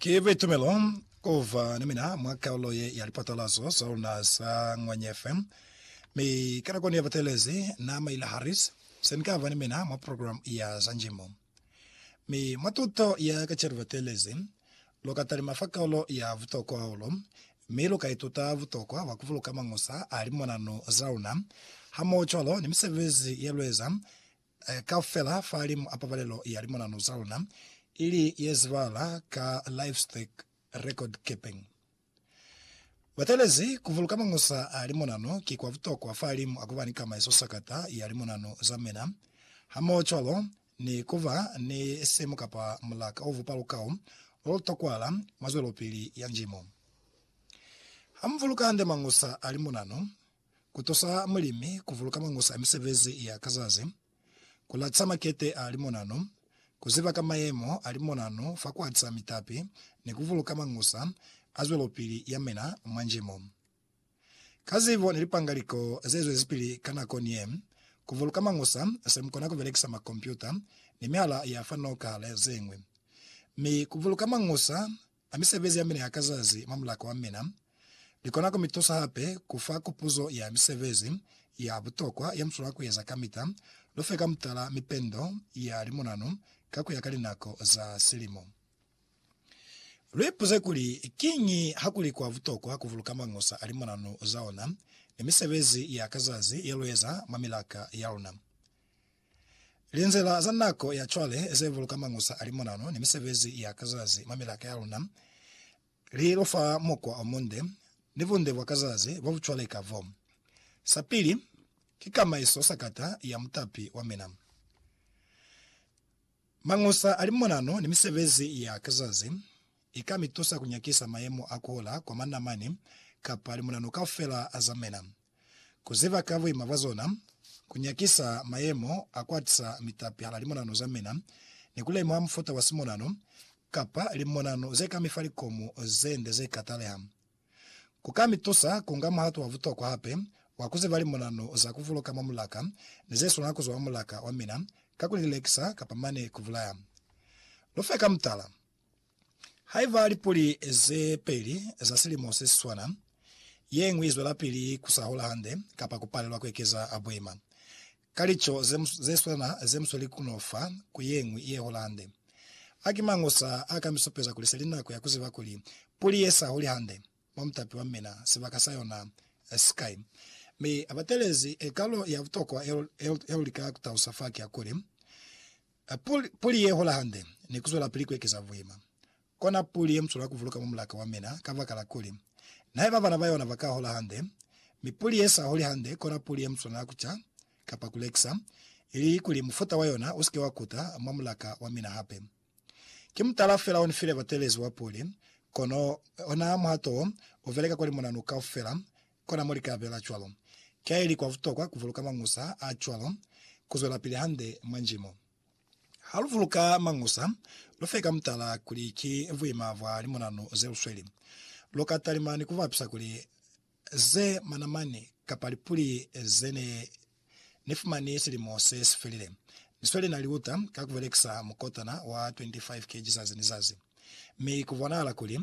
Ki buitumelo kuba ni mina mwa kaulo ye ya lipatalazo za luna za Ngwanyefe. Mi ka nakoni yabatelezi, Na, Mayla Harris, se ni kaba ni mina mwa programu ya za njimo. Mi mwa tuto ya ka celu batelezi, lu ka talima fa kaulo ya butokwa hahulu, mi lu ka ituta butokwa bwa kubuluka mañusa a limonanu za luna, hamoho cwalo ni misebezi ye lueza eh, kaufela fahalimu a pabalelo ya limonano za luna, ili yezibahala ka Livestock Record Keeping. Batelezi kuvuluka mañusa a limonano ki kwa butokwa fahalimu a kuba ni kama yesosakata ya limonano za mina, hamohocwalo ni kuba ni simu kapa mulaka o bupa lukau lolutokwahala mwa zwelopili ya njimo. Hamuvuluka hande mañusa a limonano, ku tusa mulimi ku vuluka mangusa a misebezi ya ka zazi, ku lacisa makete a limonano, ku ziba ka mayemo a limonano fa ku atisa mitapi ni ku vuluka mangusa a zwelopili ya mina mwa njimo. Ka zibo ni lipangaliko ze zwezipili ka nako ni ye, ku vuluka mangusa se mu kona ku belekisa makompyuta ni mihala ya fa noka le ze ñwi. Mi ku vuluka mangusa A misebezi ya mina ya ka zazi mwa mulaka wa mina ni kona ku mi tusa hape ku fa kupuzo ya misebezi ya butokwa ye mu swanela ku eza kamita? Lu fe ka mutala mipendo ya limunanu ka ku ya ka linako za silimo. Lu ipuze kuli, Kiñi ha ku li kwa butokwa ku buluka mañusa a limunanu za ona ni misebezi ya ka zazi ye lu eza mwa milaka ya luna? Linzila za nako ya cwale ze buluka mañusa a limonano ni misebezi ya ka zazi mwa milaka ya luna li lu fa mukwa o munde ni bunde bwa ka zazi bo bu cwaleka bo. Sa pili, ki kamaiso sakata ya mutapi wa mina. Mañusa a limonano ni misebezi ya ka zazi i ka mi tusa ku nyakisa mayemo a ku hola kwa manamani kapa limonano kaufela a za mina, ku ziba ka buima bwa zona, ku nyakisa mayemo a ku atisa mitapi hala limonano za mina, ni ku lemuha mufuta wa simonano kapa limonano ze ka mi fa likomu ze nde ze ka taleha. Ku ka mi tusa ku nga muhato wa butokwa hape wa ku ziba limonano za ku buluka mwa mulaka ni ze swanela ku zwa mwa mulaka wa mina ka ku li lekisa kapa mane ku bulaya. Lu fe ka mutala. Haiba lipuli ze peli za silimo se si swana, ye ñwi i zwelapili ku sa hola hande kapa ku palelwa ku ekeza boima, Ka lico ze swana ze mu sweli ku no fa ku ye ñwi ye hola hande. A ki mañi osa a ka mi supeza kuli se li nako ya ku ziba kuli puli ye sa holi hande mwa mutapi wa mina sibaka sa yona si kai? Mi a batelezi kalo ya butokwa ya lu lika ku talusa fa ki ya kuli, Puli ye hola hande ni ku zwelapili ku ekeza buima. Kona puli ye muswela kuvuluka mwa mulaka wa mina, kabakala kuli, naiba bana bayona baka hola hande, mi puli ye sa holi hande kona puli ye muswanela kuca, kapa kulekisa, ili kuli mufuta wa yona usike wa kuta mwa mulaka wa mina hape. Ki mutala fela onifile batelezi wa puli, kono ona muhato wo ubeleka kwa limunanu kaufela, kona mo lika bela cwalo. Kiaili kwa butokwa kuvuluka mañusa a cwalo kuzwelapili hande mwa njimo. Ha lu vuluka Mañusa, lu fe ka mutala kuli ki buima bwa limunanu ze lu sweli. Lu ka talima ni ku bapisa kuli ze manamani kapa lipuli ze ne ni fumani silimo se si felile. Ni sweli na liuta ka ku belekisa mukotana wa 25 kg zazi ni zazi. Mi ku bonahala kuli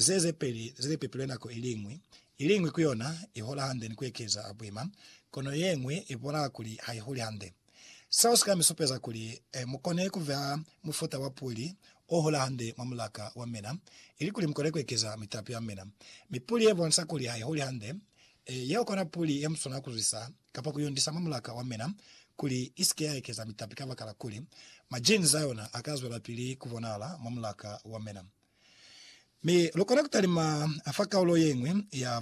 ze ze peli ze li pepilwe nako i li ñwi, i li ñwi ku yona i hola hande ni ku ekeza buima, kono ye ñwi i bonahala kuli ha i holi hande. Seo si ka mi supeza kuli mu kone ku vea mufuta wa puli o hola hande mwa mulaka wa mina, ilikuli mu kone ku ekeza mitapi ya mina. Mi puli ye bonisa kuli ha i holi hande, yeo kona puli ye mu swanela ku zwisa kapa ku yundisa mwa mulaka wa mina kuli i si ke ya ekeza mitapi kabakala kuli majinzi a yona a ka zwelapili ku bonahala mwa mulaka wa mina. Mi lu kona ku talima fa kaulo ye ñwi ya